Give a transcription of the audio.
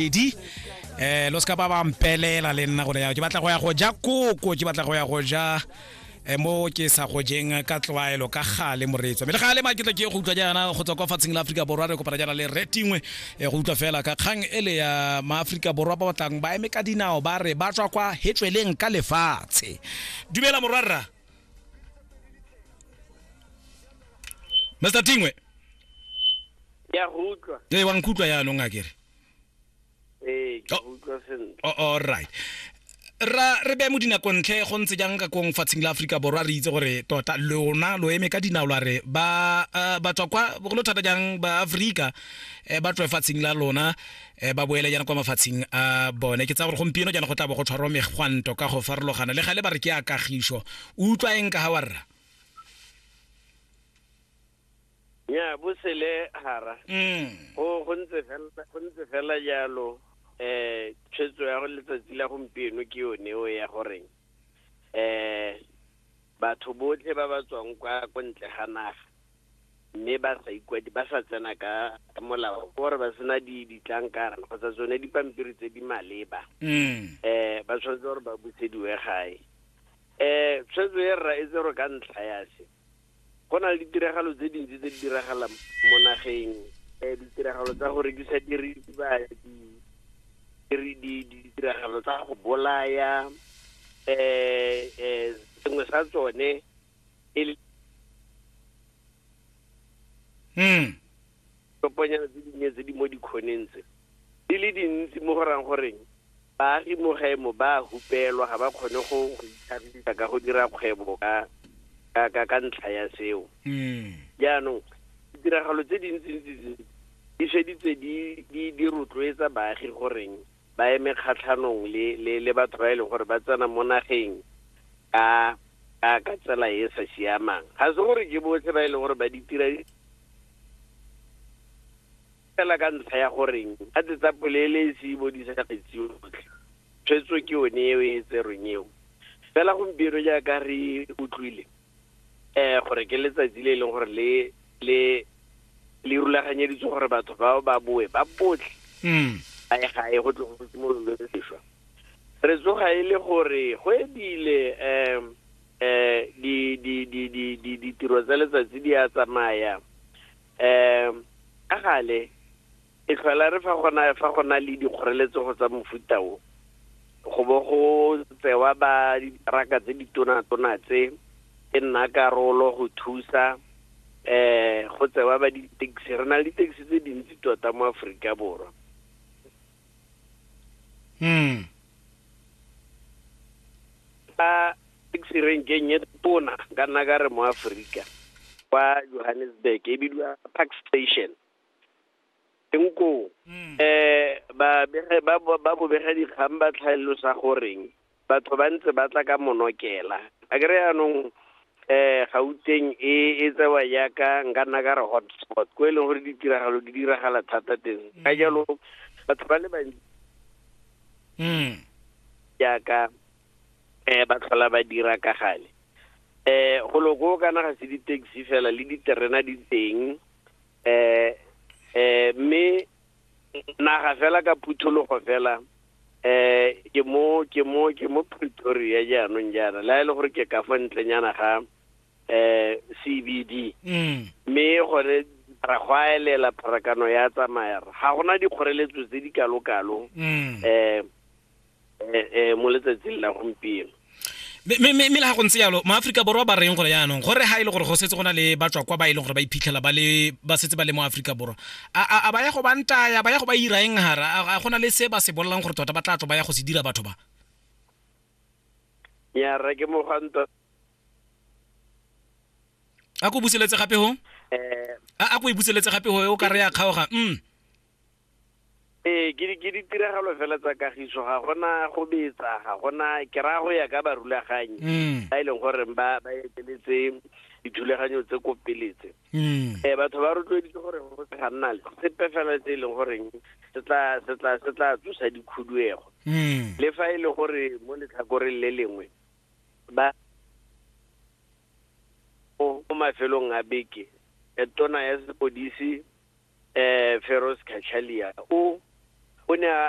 edi um lo seka ba ba mpelela le nna gore ke batla go ya go ja koko ke batla go ya go ja eh, mo ke sa go jeng ka tlwaelo ka gale moreetsa mme le gale maketla ke go utlwa jaana go tswa kwa fatsheng la aforika borwa re kopana jaana le retingwe eh, go utlwa fela ka kgang e le ya maaforika borwa ba batlang ba eme ka dinao ba re ba tswa kwa hetsweleng ka lefatshe dumela morwarra mr tingwe ke a go utlwa ee wa nkutlwa yaanong a kere ee ke oh. utlwa sentle oh, all right ra re beye mo dinakontlhe go ntse jang ka kong fatsheng la aforika borwa re itse gore tota lona lo eme ka dinao la re ba eh, ba tswa kwa bogolo thata jang ba aforika eh, ba tswe fatsheng la lona eh, ba boele jana kwa mafatsheng a bone ke tsa gore gompieno jana go tla bo go tshwarwa megwanto ka go farologana le gale ba re ke a kagiso utlwa eng ka ga warra ya bosele hara mm. go go ntse fela go ntse fela jalo eh tshwetso ya go letsatsi la gompieno ke yone o ya gore eh batho botlhe ba ba tswang kwa ko ntle ga naga mme ba sa ikwadi ba sa tsena ka molao gore ba sena di ditlankara kgotsa tsone dipampiri tse di maleba mm. eh ba tshwanetse gore ba busediwe gae eh tshwetso e rra e tse gore ka ntlha ya se go na le ditiragalo tse dintsi tse di diragalang mo nageng um ditiragalo tsa go rekisa diritibatsi ditiragalo tsa go bolaya um um sengwe sa tsone e le hmm. Toponyana tse dinnye tse di mo dikgoneng tse di le dintsi mo go rang goreng baagi mo gae mo ba a hupelwa, ga ba kgone go go itlhagisa ka go dira kgwebo ka ka ka ka ntlha ya seo. Jaanong ditiragalo tse dintsi-ntsi tse di feditse di di di rotloetsa baagi goreng ba eme kgatlhanong le, le, le batho ba e leng gore ba tsena mo nageng ka ka ka tsela e e sa siamang ga se gore ke botlhe ba e leng gore ba di tira fela ka ntlha ya goreng ga tse tsa polelesi bo di sa kgetsiwe botlhe tshwetso ke yone eo e tserweng eo fela gompieno jaaka re utlwile eh gore ke letsatsi le e leng gore le le le rulaganyeditswe gore batho bao ba boe ba botlhe mm. a e ga e go tle go simololwe sešwa re tsoga e le gore go ebile um um ditiro tsa letsatsi di a tsamaya um ka gale E tlhola re fa gona fa go na le dikgoreletsego tsa mofuta o go bo go tsewa ba ditraka tse di tona-tona tse e nna karolo go thusa eh go tsewa ba di-taxi re na le di-taxi tse dintsi tota mo aforika borwa mm. ka taxi renkeng e tona ka nna ka re mo aforika kwa johannesburg e bidiwa park station teng koo um ba bobega dikgang ba tlhalosa goreng batho ba ntse ba tla ka monokela a kry yaanong um gauteng e e tsewa yaka nka nna ka re hotspot ko e leng gore ditiragalo di diragala thata teng ka mm. jalo batho ba le bantsi mm. yaka um ba tlhola ba dira ka gale um go loko kana ga se di-taxi fela le diterena di teng eh eh me naga fela ka phuthologo fela eh ke mo ke mo ke mo Pretoria jaanong jaana la ile e gore ke ka fa ntlenyana ga eh CBD mm. me gore ra go aelela pharakano ya tsamaya ga gona dikgoreletso tse di kalo kalo mm. eh eh, eh, mo letsatsing la gompieno mme le ga go ntse yalo maaforika borwa ba reng gore yaanong gore ga e le gore go setse go na le batswa kwa ba e leng gore ba iphitlhela ba le ba setse ba le mo aforika borwa a ba ya go ba ntaya ba ya go ba ira eng gara a go na le se ba se bolelang gore tota ba tla tlo ba ya go se dira batho ba nyara ke mogwanto a ko buseletse gape go eh. a ko e buseletse gape go o ka re ya kgaoga mm ee ke ditiragalo fela tsa kagiso ga gona go betsa ga gona ke raya go ya ka barulaganyi mm. ba e leng gore ba ba eteletse dithulaganyo tse ko peletse um mm. eh, batho ba rotloeditse gore go se ga nna le sepe fela tse e leng goreng se tla tsosa dikhuduego mm. le fa e le gore mo letlhakoreng le lengwe ba mo mafelong a beke tona ya sepodisi um Feroz Cachalia o o ne a